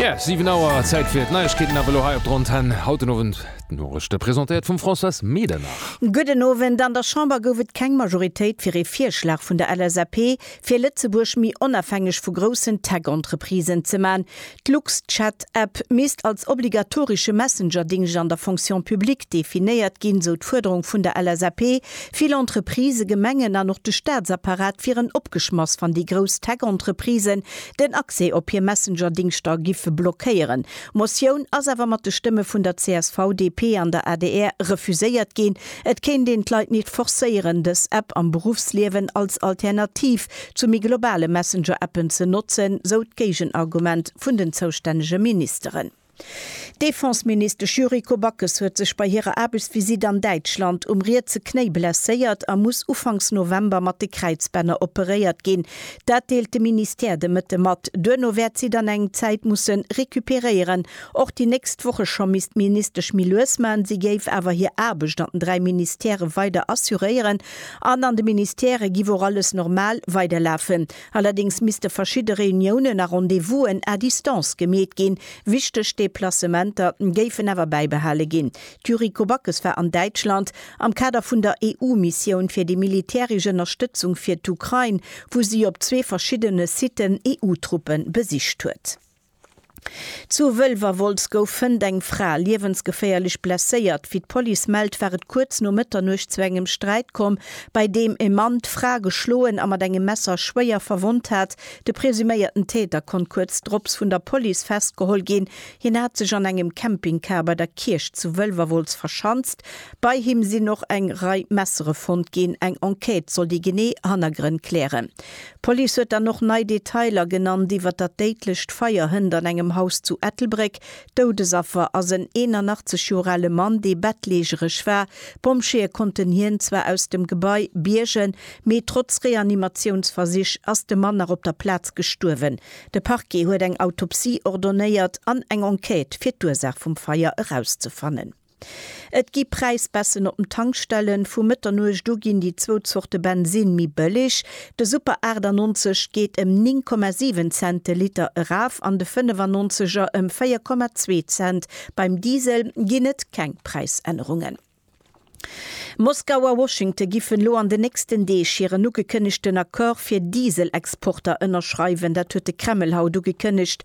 Yeah, 7 Auer Zäit fir d'Neiegkeeten awer lo hei op d'Rontan. Haut den Owend d'Norichte presentéiert vum Françoise Medernach. Gudden Owend. An der Chamber gouf et keng Majoritéit fir ee Virschlag vun der LSAP, fir Lëtzebuerg méi onafhängeg vu groussen Tech-Entreprisen ze man. D'Lux-Chat-App misst als obligatorische Messenger-Dingscht an der Fonction publique definéiert ginn, sou d'Fuerderung vun der LSAP, Vill Entreprisë, Gemengen an och de Staatsapparat wieren opgeschmass, wann déi grouss Tech-Entreprisen den Accès op hir Messenger-Dingschter giffe blockéieren. D'Motioun ass awer mat de Stëmme vun der csv, DP an der adr refuséiert ginn. Et kéint een d'Leit nit forcéieren, dës App am Beruffsliewen als Alternativ zu méi globale Messenger-Appen ze notzen, sou d'Géigenargument vun den zoustännege Ministeren. D'Defenseministesch Yuriko Backes huet sech bei hirer Aarbechtsvisitt an Däitschland um rietse Knéi blesséiert a muss ufanks November mat de Kräizbänner operéiert ginn. Dat deelt de Ministère de Mëtte mat. Duerno wäert si dann eng Zäit musse recuperéieren. Och déi nächst Woche scho misst d'Ministesch méi lues man. Si géif awer hir Aarbecht an den dräi Ministèrë weider assuréieren an an de Ministèrë giff och alles normal weiderlafen. Allerdéngs misste verschidde Reuniounen a Rendez-vousen à distance gemeet ginn. Wichteg Deplacementer géifen awer bäibehale ginn. D'Yuriko Backes war an Däitschland am Kader vun der EU-Missioun fir déi militäresch Ënnerstëtzung fir d'Ukrain, wou si op zwee verschiddene Siten EU-Truppe besicht huet. Zu Wëlwerwolz gouf fënnt eng Fra liewensgeféierlech blesséiert. Wéi d'Police mellt, war et kuerz no Mëtternuecht zu engem Sträit komm, bei deem e Mann d'Fra geschloen a mat engem Messer schwéier verwonnt hat. De presuméierten Täter konnt kuerz drops vun der Police festgeholl ginn. Hien hat sech an engem Campingcar bei der Kierch zu Wëlwerwolz verschanzt. Bei him sinn och eng Rei Messere fonnt ginn. Eng Enquête soll déi genee Hannergrënn klären. D'Police huet dann och nei Detailer genannt iwwer dat déidlecht Feier hënt an engem Haus zu Ettelbréck. Doudesaffer ass en 81 Joer ale Mann, dee bettleegeresch war. D'Pompjeeë konnten hien zwar aus dem Gebai biergen, mee trotz Reanimatiounsversich ass de Mann nach op der Plaz gestuerwen. De Parquet huet eng Autopsie ordonnéiert an eng Enquête, fir d'Ursaach vum Feier erauszefannen. Et gi Präisbaissen op den Tankstellen, vu Mëtternuecht u ginn déi zwou Zorte Bensinn méi bëlleg, de Super 98 geet ëm 9,7 Cent de Liter eraf an de 95 er ëm 4,2 Cent. Beim Diesel ginn et keng Präisännerungen. Moskau a Washington giffen elo an den nächsten Deeg hiren ugekënnegten Accord fir Diesel-Exporter ënnerschreiwen. Dat huet de Kreml haut ugekënnegt.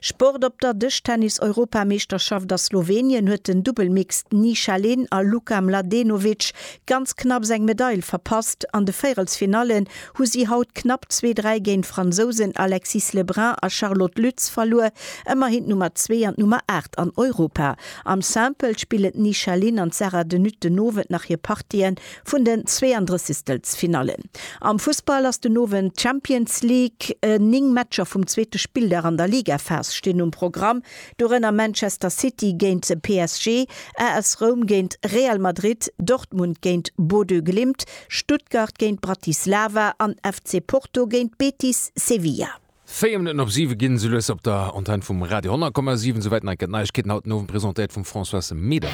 Sport Op der Dëschtennis-Europameeschterschaft a Slowenien huet den Dubbel Mixed Ni Shaleen a Luka Mladenovic ganz knapps eng Medail verpasst. An de Véierelsfinallen hu si haut knapp zwee dräi géint d'Fransousen Alexis Lebrun a Charlotte Lütz verluer, ëmmerhin d'Nummer zwee an d'Nummer aacht an Europa. Am Simple spillen d'Ni Shaleen an d'Sarah de Nutte den Owend nach hir Partien. Vun den Zweeëndressigstelfsfinallen am Fussball ass den Owend d'Champions League. Néng Matcher vum zweete Spilldag an der Ligaphas stinn um Programm, dorënner Manchester City géint de PSG, AS Roum géint Real Madrid, Dortmund géint Bodø Glimt, Stuttgart géint Bratislava an FC Porto géint Betis Sevilla. Véier Minutten op siwe ginn esou lues op der Antenn vum Radio 10,7. Souwäit nei gëtt Neiegkeeten haut den Owend presentéiert vum Françoise Medem.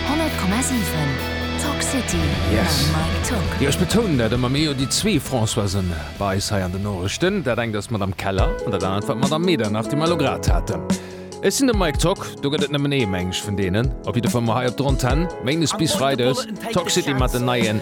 100,7 Talk City Yes. mam Mike Tock. Jo, ech betounen dat ëmmer, mir hu jo déi zwee Françoisen bei eis hei an den Norechten. Dat engt ass d'Madame Keller an dat anert war d'Madame Medernach, déi mer elo grad haten. Ech sinn de Mike Tock, do gëtt et nëmmen ee, meng ech, vun deenen. Op jidde Fall mol hei op der Antenn, Méindes bis Freides, Talk City mat den neien.